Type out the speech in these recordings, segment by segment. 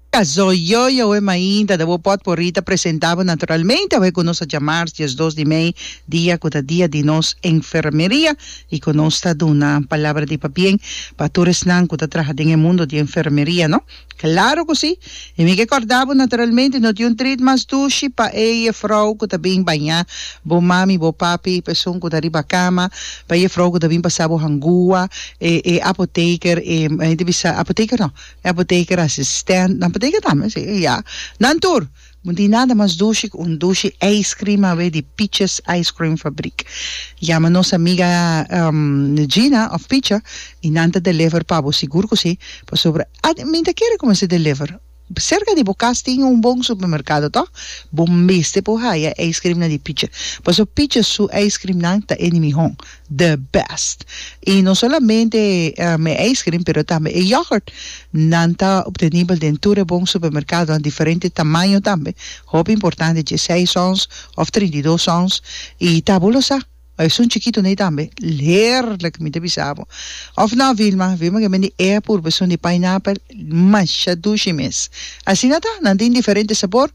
Kazó yoyo awe mainta ta bo pot por rita presenta bo naturalmente awe ku nos a djamars dies dos di mei dia ku ta dia di nos enfermeria i ku nos ta duna palabra di pabien pa tur esnan ku ta traha den e mundo di enfermeria no? Klaro ku si! I mi ke kòrda bo naturalmente no tin un trit mas dushi pa e jefrou ku ta bin bañá bo mami bo papi peson ku ta riba kama pa e jefrou ku ta bin pasa bo hangua e e apoteker e mi ta bisa apoteker no Apoteker asistent nan poteker tambe si ya nan tur no tin nada mas dushi ku un dushi ice cream awe di Piches ice cream fabrik yama nos amiga Gina of Picha i nan ta deliver pa bo sigur ku si pasobra at mi ta kere ku mester deliver serka di bo kas tin un bon supermerkado tò bo mester por haya ice cream nan di Piche pasobra Piche su ice cream nan ta e di mihó. the best y no solamente e ice cream pero tambe e yoghurt nan ta obtenibel den tur e bon supermercadonan diferente tamaño tambe hopi importante dje seis ons of trinta i dos ons y tabu lo sa esun chikito nei tambe heerlijk mi ta bisa bo of no Vilma Vilma ke bende e purba esun di pineapple masha dushi mes asina ta nan tin diferente sabor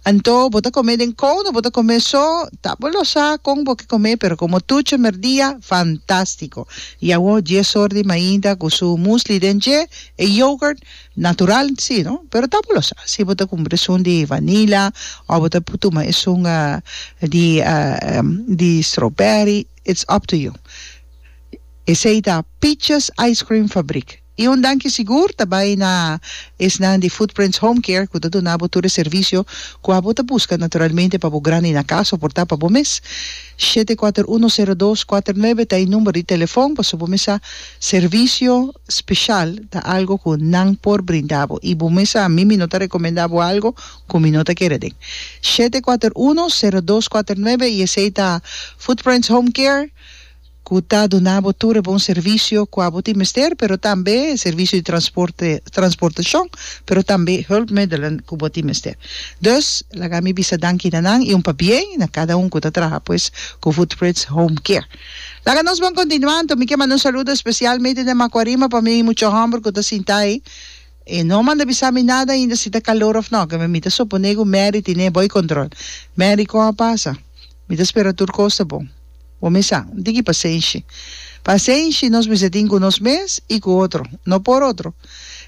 anto bo ta come den kouno bo ta come so Ta bo lo sa con bo ke comé pero como tu chemer dia fantastico y awor dje sort di mainda cu su musli den dje e yoghurt natural si no pero ta bo lo sa si bo ta cumpra esun di vanila of bo ta tuma esun di di strawberry it's up to you esey ta Peaches Ice Cream Fabriek. Y un danki sigur ta bay na esnan di Footprints Home Care cu ta duna bo tur e servicio cu abo ta busca naturalmente pa bo grandi na cas of por ta pa bo mes. Shete kuater uno sero dos kuater nuebe ta e number di telefon pasobra bo mesa servicio special ta algo cu nan por brinda bo y bo mesa a mi mi no ta recomenda bo algo cu mi no ta kere den. Shete kuater uno sero dos kuater nuebe y esey ta Footprints Home Care. ku ta duna bo tur e bon servisio kua bo tin mester, pero tambe servisio di transporte, transportashon, pero tambe hulpmiddelen ku bo tin mester. Dus, laga mi bisa danki na nan i un pabie na kada un ku ta traha pues ku Footpritz Home Care. Laga nos bon kontinuá anto. Mi ke manda un saludo espesial mei den Makuarima pa mi mucha hòmber ku ta sinta ei. E no manda bisa mi nada ainda si ta kalor òf no, ke mi ta suponé ku Mary tine bo ei kontrol. Mary kon a pasa? Mi ta spera tur cos ta bon. Bo mes sa, un tiki pasenshi. Pasenshi nos mester tin cu nos mes y cu otro, no por otro.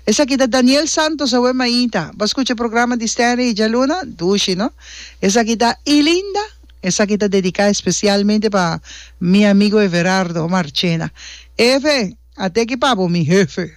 Esaki ta Daniel Santos awe mainta. Bo a scucha programa di Stanley y Dja Luna? Dushi, no? Esaki ta Ilinda. Esaki ta dedica especialmente pa mi amigo Everardo Marchena. Efe, a teki pa bo mi hefe.